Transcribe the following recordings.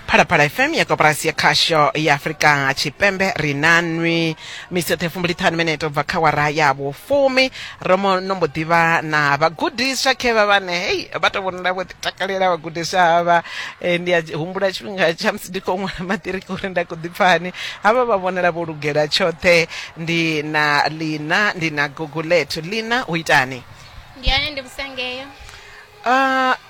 phalaphala fm ya koporasi ya khasho ya afurika tshipembe ri na nwi misi yoṱhe fumbuliṱhanu minete u bva kha wara ya vhufumi ro mo no mbo ḓivha na vhagudiswa khe vha vhane hei vha to vhonala vho takalela vhagudiswa havha eh, ndi a humbula tshifhinga tsha musi ndi khou ṅwala maṱiriki uri nda khou ḓipfani havha vha vhonala vho lugela tshoṱhe ndi na lina ndi na gugulethu lina u itani ndi ane ndi musangeyo Ah,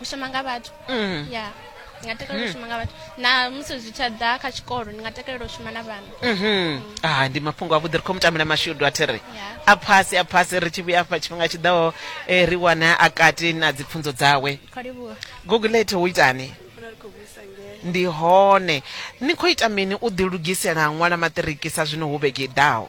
u shuma nga vhathu mm. ya ndi nga takalela u mm. shuma nga vhathu na musi zwi tsha ḓa kha tshikolo ndi nga takalela u shuma na vhana mm-hmm. mm. ah, ndi mafhungo a vhuḓi ri khou mutamela mashudu a thi ri a phasi a phasi ri tshi vhuya afha tshifhinga tshi ḓaho eh, ri wana a kati na dzipfunzo dzawe gogulate wo itani ndi hone ni khou ita mini u ḓilugisela ṅwala maṱiriki sa zwino hu vhege i ḓaho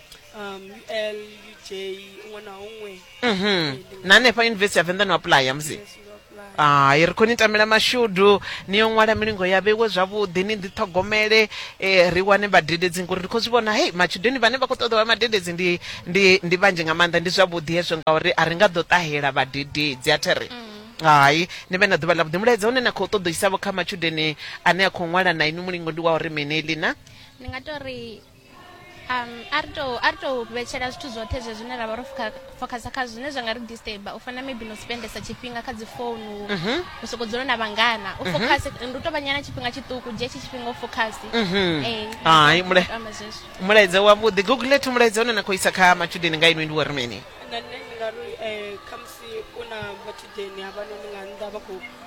um ul uj huṅwe na huṅwe mhm. na hanefha yunivesithi ya venḓa no apuḽaya musi hai ri khou ni tamela mashudu ni yo ṅwala milingo ya vheiwe zwavhuḓi ni ḓiṱhogomele um ri wane vhadededzi ngori ri khou zwi vhona hei matshudeni vhane vha khou ṱoḓa vha madededzi ndi ndi ndi vhanzhi nga maanḓa ndi zwavhuḓi hezwo ngauri a ri nga ḓo ṱahela vhadededzi a thi ri mm hai ni vhe na ḓuvha ḽa vhuḓi mulaedza une na khou ṱoḓo isavho kha matshudeni ane a khou ṅwala na inwi mulingo ndi wa uri mini lina ndi nga to ri um a ri tou a ri tou vhetshela zwithu zwoṱhe zwe zwine ra vha ro focusa kha zwine zwa nga ri disturba u fana maybe no spendesa tshifhinga kha dzi founu mhm. u soko dzula na vhangana u mhm. focus ndi u tou vhanyana tshifhinga tshiṱuku dzhia tshi tshifhinga u focus mhm. eh, hai mulaedza wavhuḓi google let mulaedza une na khou isa kha matshudeni nga inwi ndi wa ri mini eh, khamusi u na matshudeni havhanoni nga nnḓa vha khou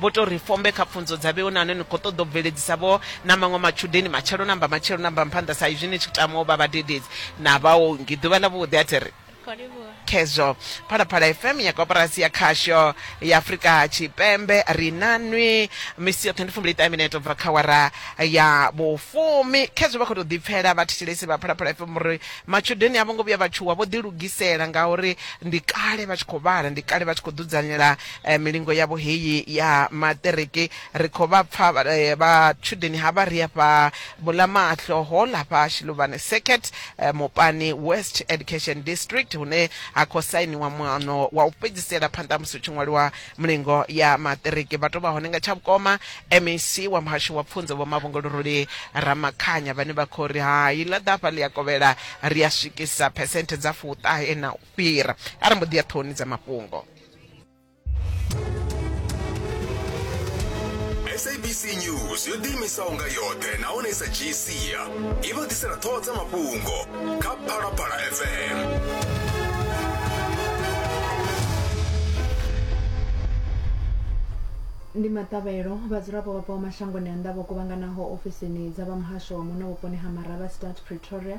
Vho tou ri fombe kha pfunzo dza vheu na hone ni khou ṱoḓa u bveledzisa vho na maṅwe matshudeni matshelo na mbamatshelo na mbamphanda sa izwi ni tshi tama u vha vhadededzi na vhaongi ḓuvha ḽa vhuḓi a thi ri khezwo. Phalaphala FM ya Koporasi ya Khasho ya Afrika Tshipembe ri na nwi misi yoṱhe ndi fumbili ṱahe mineto bva kha awara ya vhufumi. Khezwo vha khou tou ḓipfela vhathetshelesi vha Phalaphala FM uri matshudeni a vho ngo vhuya vha tshuwa vho ḓilugisela ngauri ndi kale vha tshi khou vhala, ndi kale vha tshi khou dzudzanyela eh, milingo yavho heyi ya maṱereke ri khou vha pfa vha- eh, vhatshudeni havha ri afha mulamahlo hall hafha shiluvhane circuit eh, mupani west education district hune ha khou sainiwa muano wa u fhedzisela phanḓa ha musi hu tshi ṅwaliwa mulingo ya maṱereke vha tou vha hone nga tsha vhukoma mec wa muhasho wa pfunzo vho mavhongoloroli ramakhanya vhane vha khou ri hai ḽa ḓafha ḽi a kovhela ri a swikisa phesenthe dza fuṱahe na u fhira a ri mbo ḓi ya ṱhohoni dza mafhungo sabc news yo ḓiimisaho nga yoṱhe nahone sa gcia i vha ḓisela ṱhoho dza mafhungo kha phalaphala fm ndi maṱavhelo vhadzulapo vha bvaho mashangoni a nnḓa vho kuvhanganaho ofisini dza vha muhasho wa muno vhuponi ha maraba start pretoria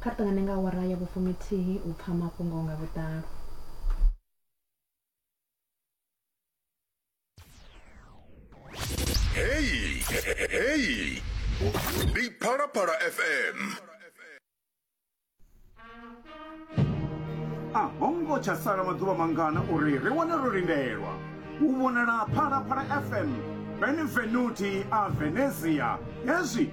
Kha ri ṱangane nga awara ya vhufuminthihi u pfa mafhungo nga vhuḓalo. Heyi, heyi ndi Phalaphala FM. A ho ngo tsha sala maḓuvha mangana uri ri wane ro lindelwa u vhonala Phalaphala FM Benvenuti a Venezia hezwi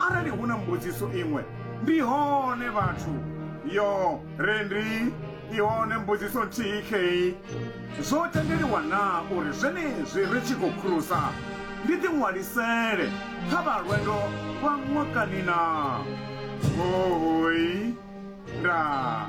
Arali hu na mbudziso iṅwe, ndi hone vhathu. Yo re ndi i hone mbudziso nthihi khei. Zwo tendeliwa naa uri zwenezwi ri tshi khou khurusa ndi ḓiṅwalisele kha vha lwendo lwa ṅwakani naa? Hohoi. Ndaa.